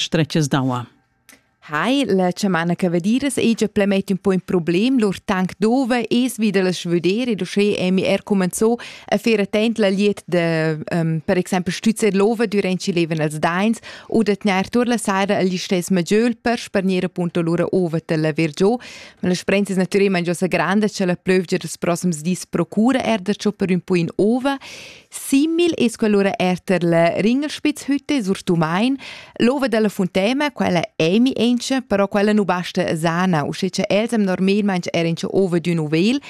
stretgas d'aua. Hai, la chamana cavadiras ei già plemet un po in problem, lur tank dove es wieder las vedere, du sche emi er comenzò a faire attent la liet de um, per exempel stüzer lova durant ci leven als dains oder tner tur la sera agli stes maggiol per sparnire appunto lura ova la vergio, ma la sprensis naturalmente già sa grande c'è la plövgia des prossums dis procura er da ciò per un po in ova Simil es quell'ura er ter la Ringelspitzhütte sur Tumain, l'ova della Fontema, quella emi enche, però quella nu basta sana, usche che els am normalmente er enche ova d'ün uvel.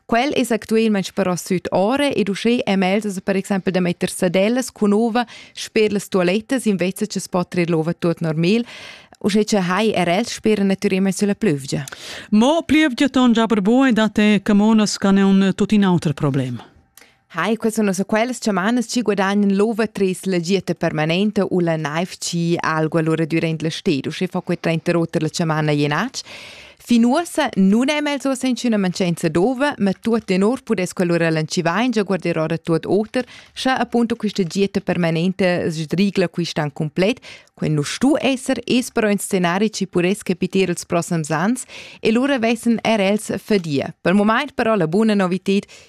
Quel es actualmente però süd ore ed usche am els per exempel da metter sadellas cun ova sper las toilettas invece che spotrer l'ova tot normal. Usche che hai er els spera naturalmente sulla plövgia. Mo plövgia ton giaber boi da te camonas can è un tutin auter problem. Hai, quels sono so quels chamanas ci guadagnan l'ova tres la dieta permanente u la naiv ci algo allora durant la stedo, sche fa quei 30 rota la chamana jenatsch. Fin uossa nun è mel so senza una mancanza d'ova, ma tuot in or pudess quell'ora lanciva in già guarderò da tuot oter, scha appunto questa dieta permanente sdrigla quistan complet, quel nu stu esser es però in scenari ci puress capiter els prossams ans e lura vessen er els fadia. Per moment però la buona novited